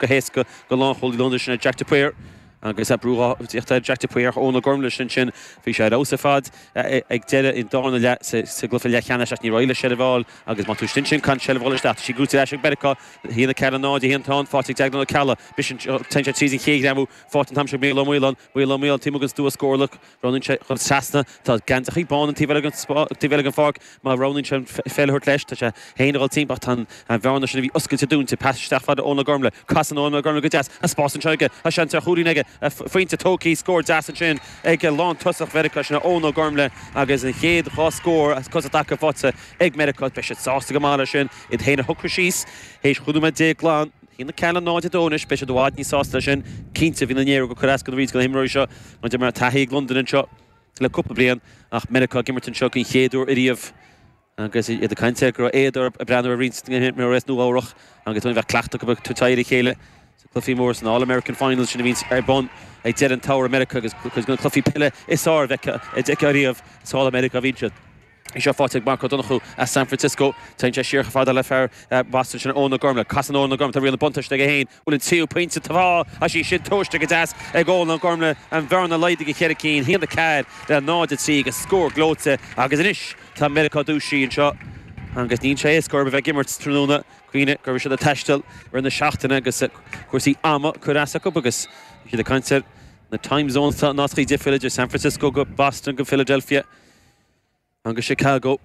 go héasca go lánchúlaí Londan sin é Jack de Paor agus brú ag tíocht ar Jack de Paor ach Eoin Ó Gormlaigh ansin bhí sé ar fheabhas ar fad ag deireadh an darna leath sa gcluiche leathcheannais ach ní raibh le seirbheáil agus má tú stints sin can seirbheáil isteach tá sí gnóite ar ais ag Meiriceá 1-4 0 de Shíon Tán Phádraig Deag na Cealla b'shin téann sé tríd an chéad ghreamú faighte an t-am seo ag Micheál Ó Maoláin Bhuail Ó Maoil taom agus d'uas górlach. Roghnaíonn sé dhul trasna. Tá geansachaí bán an taobh eile den pháirc. Má roghnaíonn sé an pheil a thabhairt leis, tá sé féin a dhul timpeall ach tá an bhearna sin a bhí oscailte dúinte. Pas isteach fhad le Eoin Ó Gormlaigh. Casann Eoin Ó Gormlaigh go deas. Tá spás anseo aige. Tá seans ar chúilín aige. Pointe tógthaí. Scór deas ansin ag lántosach Mheiriceá, sin é Eoin Ó Gormlaigh agus an chéad dhá scór as cosa i dtaca faighte ag Meiriceá. Beidh siad sásta go maith le sin. Iad féin a shocrú síos théis chúig nóiméad déag glan. 1-4 le 0-2 anois, beidh siad i bhfad níos sásta leis sin, cinnte. Bhí na Néaró go coireascadh roinnt de na himreoirí seo mar d'imir taithí ag Londain anseo le cúpla bliain ach Meiriceá ag imirt anseo den chéad uair ariamh agus iad ag caint ar go raibh éad orthu ag breathnú ar roinnt de na himreoirí as Nua Eabhrach agus bheith ag cleachtadh acu ag teacht ar a chéile sna cluichí móra, san All American Finals sin a bhíonns ar bun ag deireadh an tSamhraidh i Meiriceá agus cuid de na cluichí peile is fearr a d'fheicfeá ariamh is thall i Meiriceá a bhíonn siad. Í seo faighte ag Mark Ó Donnchú as San Francisco. Téann sé siar chomh fada le fear Bhoston sin, Eoin Ó Gormlaith. Casann Eoin Ó Gormlaith riail na buntáiste ag Eoin, bhfuil an tríú pointe taobh amuigh is í sin tomhaiste go deas ag Eoin Ó Gormlaith, an bhearna laghdaithe go cheithre cinn, 1-4 le 0-3 agus scór gleoite agus anois tá Meiriceá dúisithe anseo agus níl sé éasca orthu a bheith ag imirt tráthnóna cuimhnigh go raibh siad ag taisteal i rith na seachtaine agus cúrsaí ama ag cur as acu agus bhí siad ag caint ar na time zones, tá nascaí difriúla idir San Francisco go Boston go Philadelphia. ann go Chicago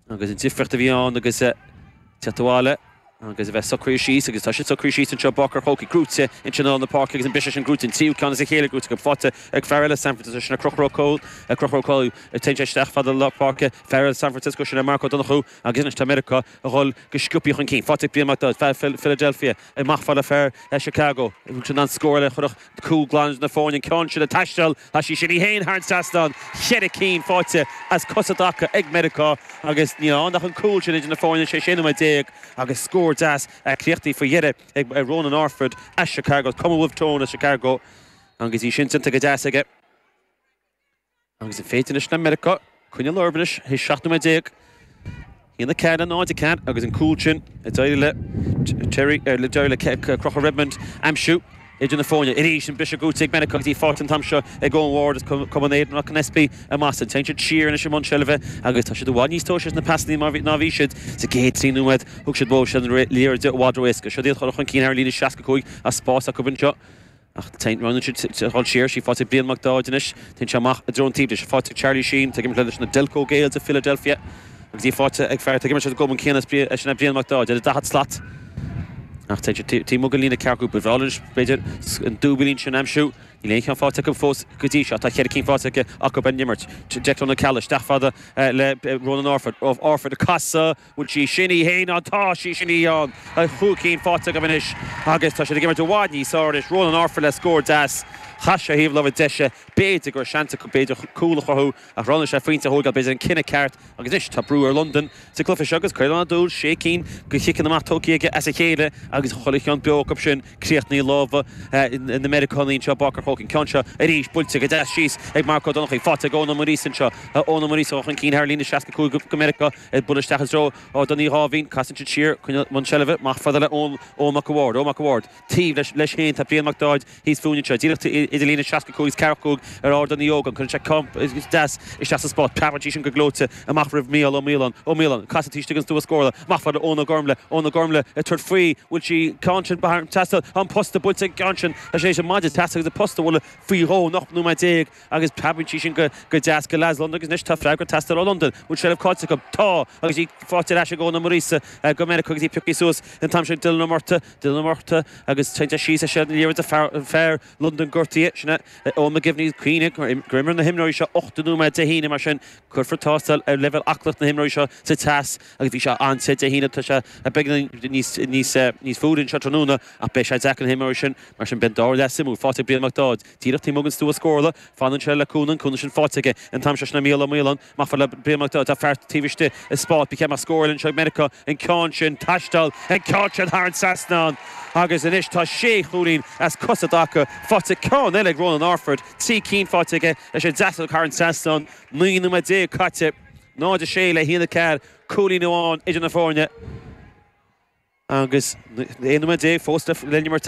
agus an difríocht a bhí ann agus teacht abhaile agus a bheith socraithe síos agus tá siad socraithe síos anseo, bac ar chocaigh, gnóite in tionól na páirce agus an briseadh sin, gnóite an tríú ceann as a chéile, gnóite agus faighte ag fear eile San Francisco, sin é Conchúr Ó Conchúr Ó Cóil agus téann sé isteach fhad le lár páirce, fear eile San Francisco, sin é Mark Ó Donnchú agus anois tá Meiriceá a dhul go sciopthaí chun cinn, faighte ag Brian Mac Daill, fear Philadelphia, amach fhad le fear Chicago, seans ar scór eile a chuirfeadh cúl glan idir na foirne, an ceann sin ag taisteal. Tá sí sin í féin thar an trasnán, cheithre cinn faighte as cosa i dtaca ag Meiriceá agus níl ann ach an cúl sin idir na foirne théis sé nóiméad déag agus scór deas críochnaithe faoi dheireadh ag Ronan Orford as Chicago, Cumann Wolfe Tone as Chicago agus í sin déanta go deas aige. Agus an féidir leis na Meiriceá. Coinneáil orthu anois, théis 17 nóiméad, 1-4 le 0-4, agus an cúl sin a d'éirigh le Terry, a d'éirigh le Conchúr Redmond aimsiú idir na foirne arís. An briseadh gnóite ag Bennett agus í faighte an t-am seo ag Eoin Ward as Cumann Aidan McAnespie i mBoston. Téann siad siar anois i mbun seilbhe agus tá siad i bhfad níos tomhaiste leis na pasanna ná a bhí siad sa gcéad trí nóiméad. Thug siad suas an liathróid i bhfad ró-éasca. Siod iad a dhul chun cinn thar an líne 65 tá spás acu anseo. Roghnaíonn siad a dhul siar, is í faighte ag Brian Mac Dáid anois, téann sé amach i dtreo an taobh di, is í faighte ag Charlie Sheen, ag imirt leis na Delco Gaels i Philadelphia agus í faighte ag fear atá ag imirt leis an gcumann céanna, is sin é Brian Mac Dáid, ar a daichead slat. Ach téann siad taobh amuigh den líne ceathracha cúig, ba bhreá linn b'fhéidir an dúbilín sin a aimsiú, níl aon cheann faighte acu fós go dtí seo, tá ceithre cinn faighte acu ar an imirt, Declan O'Callagh, isteach fada le Ronan Orford, Orford ag casadh! bhfuil sí sin thar an trasnán, tá chúig cinn faighte acu anois agus tá siad ag imirt i bhfad níos fearr anois, Ronan Orford le scór deas, chas sé ar thaobh láimhe deise, b'fhéidir go raibh seans acu, b'fhéidir, cúl a chruthú ach roghnaigh sé an pointe a thóigeáil, b'fhéidir an cinneadh ceart agus anois tá brú ar Londain sa gcluiche seo agus Caolán Ó Dúill, sé cinn de chiceanna amach tugtha aige as a chéile agus chuile cheann beo acu sin críochnaithe i lámha na Meiriceánaí anseo, Barker Cook an ceann seo arís, buailte go deas síos ag Mark Ó Donnachaidh, faighte ag Eoin Ó Muiríosa anseo, Eoin Ó Muiríosa chun cinn thar líne, 65 go Meiriceá. Ag bualadh isteach i dtreo Ardán Uí Dháimhín, casann siad siar coinneáil i mbun seilbhe amach fada le Eoin Mac a' Bhaird. Eoin Mac a' Bhaird. Taobh leis féin tá Brian Mac Daid thíos fúinn anseo, díreach idir líne 65 is 45 ar Ardán Uí Ógáin. Cuireann sé ceann deas isteach sa spás. Preabann sí sin go gleoite amach roimh Mhícheál Ó Maoláin. Ó Maoláin. Ag casadh taobh istigh den stua scórála. Amach fada le Eoin Ó Gormlaigh. Eoin Ó Gormlaigh ag tabhairt faoi. Bhfuil sí ceann sin thar an trasnán? An posta buailte an ceann sin. Tá sé tar éis an maide trasna agus an posta a bhualadh faoi dhó, in 18 nóiméad. agus preabann sí sin go deas go Las London agus anois tá freagra ag teastáil ó Londain, bhfuil seilbh caillte acu? Tá! agus í faighte ar ais ag Eoghan Ó Muiríosa go Meiriceá agus í pioctha suas an t-am sin Dylan Ó Murtagh, Dylan Ó Murtagh, agus téann sé síos ach is léir go bhfuil fear Londain gortaithe, sin é Eoin McGivney, cuimhnigh gur imir na himreoirí seo ochtó nóiméad Dé hAoine, mar sin cuirfear tástáil ar leibhéal aclaíocht na himreoirí seo sa teas agus bhí sé an-te Dé hAoine, tá sé beagán níos fuaire anseo tráthnóna ach beidh sé deacair ar na himreoirí sin mar sin beidh an dara leath suimiúil, faighte ag Brian Mac Dáid. Díreach taobh amuigh den stua scórála, fanann sé le cúnamh, cúnamh sin faighte aige an t-am seo, sin é Mícheál Ó Maoláin, amach fada le Brian Mac Dáid, tá fear taobh istigh i spás, beidh seans maith scórála anseo ag Meiriceá, an ceann sin ag taisteal, an ceann sin thar an trasnán agus anois tá sé chúilín as cosa i dtaca faighte, ceann eile ag Ronan Orford, trí cinn faighte aige leis an deasóg thar an trasnán, naoi nóiméad déag caite, 0-6 le haon a ceathair, cúilín amháin idir na foirne agus aon nóiméad déag fós le n-imirt.